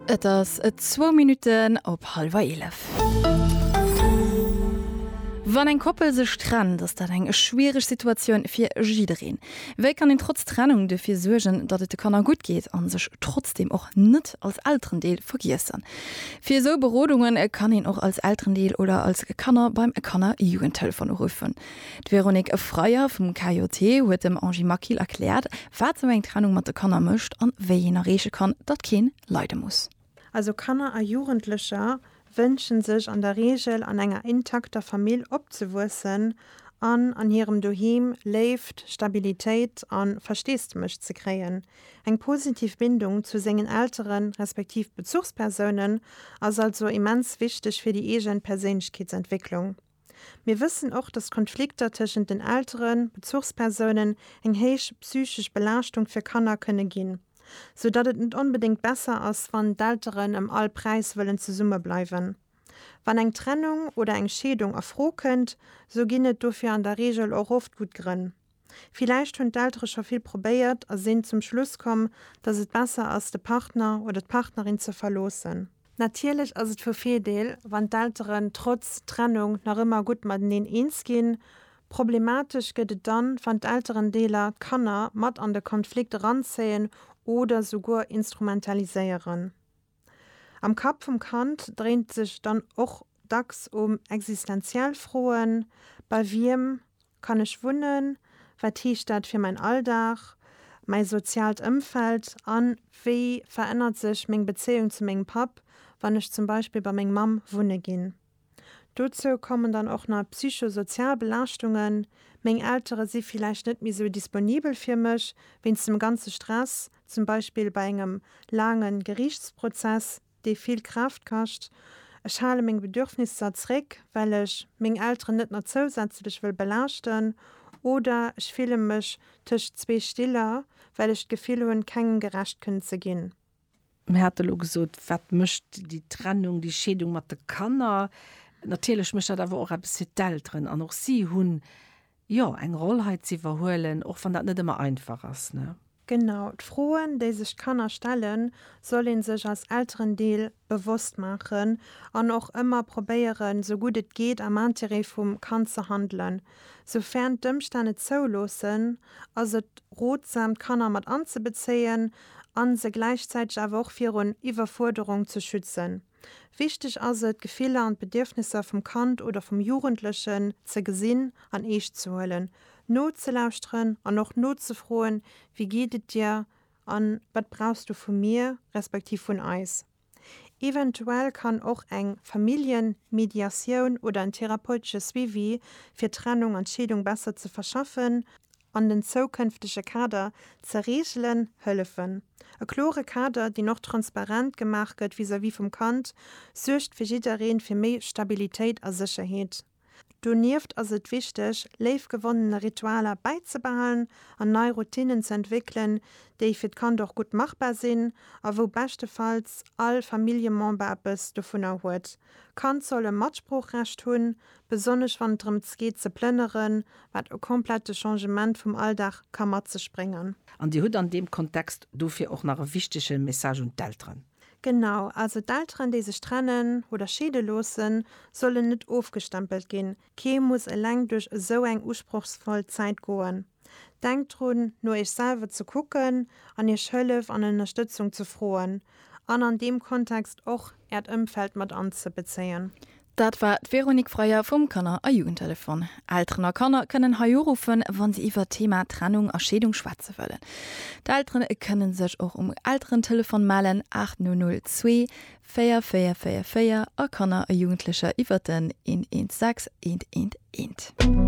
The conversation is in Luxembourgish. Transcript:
Et ass et zwou Minutten op hallwer eelef. Wann eng Koppel sech trennt, ass dat eng schwiereg Situatioun fir jiddereen. Wéi kann een trotz Trennung dofir suergen, datt et de Kanner gutt geet a sech trotzdeem och net als Elterendeel vergiessen? Fir esou Berodunge kann een och als Elterendeel oder als Kanner beim Kanner-Jugendtelefon uruffen. D'Véronique Efreyer vum KJT huet dem Angie Maquil erkläert, wat esou eng Trennung mat de Kanner mécht an wéi een erreeche kann, datt keen leide muss. Also Kanner a Jugendlecher wënsche sech an der Reegel an enger intakter Famill opzewuessen an an hirem Doheem Léift, Stabilitéit a Versteesdemech ze kréien. Eng positiv Bindung zu sengen Eltere respektiv Bezuchspersounen ass also immens wichteg fir déi eegen Perséinlechkeetsentwécklung. Mir wëssen och, dass Konflikter tëschent den Elteren, Bezuchspersounen, eng héich psychesch Belaaschtung fir Kanner kënne ginn, sou datt et net onbedéngt besser ass, wann d'Elteren ëm all Präis wëllen zesumme bleiwen. Wann eng Trennung oder eng Scheedung a Fro kënnt, sou ginn et dofir an der Reegel och oft gutt Grënn. Villäicht hunn d'Eltere scho vill probéiert a sinn zum Schluss komm, dass et besser ass, de Partner oder d'Partnerin ze verloossen. Natierlech ass et vu Virdeel, wann d'Elteren trotz Trennung nach ëmmer gutt mateneen eens ginn. Problematesch gëtt et dann, wann d'Elterendeeler d'Kanner mat an de Konflikt eranzéien oder souguer instrumentaliséieren. Am Kapp vum Kand dréint sech dann och dacks um existenziell Froen, Bei wiem kann ech wunnen? Wat heescht dat fir mäin Alldag, mäi soziaalt Ëmfeld? A wéi verännert sech meng Bezéiung zu mengem Papp, wann ech zum Beispill bei meng Mamm wunne ginn? Dozou kommen dann och nach psycho-sozial Belaaschtungen, meng Eltere si villäicht net méi esou disponibel fir mech, wéinst dem ganze Stress, zum Beispill bei engem laange Geriichtsprozess, dee vill Kraaft kascht. Ech hale meng Bedürfnisser zréck, well ech meng Elteren net nach zousätzlech wëll belaaschten. Oder ech fille mech tëscht zwee Stiller, well ech d'Gefill hunn, kengem gerecht kënnen ze ginn. Mir hate elo gesot, wat mécht déi Trennung, déi Scheedung mat de Kanner. Natierlech mécht dat awer och eppes fir d'Elteren an och si hunn, jo, eng Roll hei ze iwwerhuelen, och wann dat net ëmmer einfach ass, ne? Genau, d'Froen, déi sech d'Kanner stellen, soll ee sech als Elterendeel bewosst maachen an och ëmmer probéieren, sou gutt et geet, am Intérêt vum Kand ze handelen. Soufern d'Ëmstänn et zouloossen, ass et rotsam d'Kanner mat anzebezéien a se gläichzäiteg awer och virun Iwwerfuerderung ze schützen. Wichteg ass et, d'Gefiller an d'Bedierfnisser vum Kand oder vum Jugendlechen ze gesinn an eescht ze huelen, nozelauschteren an och nozefroen, Wie geet et dir? an Wat brauchs du vu mir, respektiv vun eis? Eventuell kann och eng Familljenmediatioun oder en therapeutesche Suivi fir d'Trennung an d'Scheedung besser ze verschaffen an den zoukënftege Kader ze reegelen hëllefen. E klore Kader, deen och transparent gemaach gëtt vis-à-vis vum Kand, suergt fir jiddereen fir méi Stabilitéit a Sécherheet. Donieft ass et wichteg, léif gewonnene Ritualer bäizebehalen an nei Routinnen ze entwéckelen, déi fir d'Kand och gutt machbar sinn a wou beschtefalls all Familljemember eppes dovunner huet. Kand soll e Matsproochrecht hunn, besonnesch wann et drëms geet ze plënneren, wat e komplette Changement vum Alldag ka mat sech bréngen. An Dir hutt an deem Kontext dofir och nach e wichtege Message un d'Elteren. Genau, also d'Elteren déi sech trennen oder scheede loossen, sollen net ofgestempelt ginn. Kee muss eleng duerch esou eng usprochsvoll Zäit goen. Denkt drun, no iech selwer ze kucken an iech Hëllef an Ënnerstëtzung ze froen an an deem Kontext och äert Ëmfeld mat anzebezéien. Dat war d'Véronique Freier vum Kanner a Jugendtelefon. Elteren a Kanner kënnen hei uruffen, wa se iwwert d'Thema Trennung a Scheedung schwätze wëllen. D'Elteren kënnen sech och um Elterentelefon mellen, 8002 4444 a Kanner a Jugendlecher iwwert den 116 111.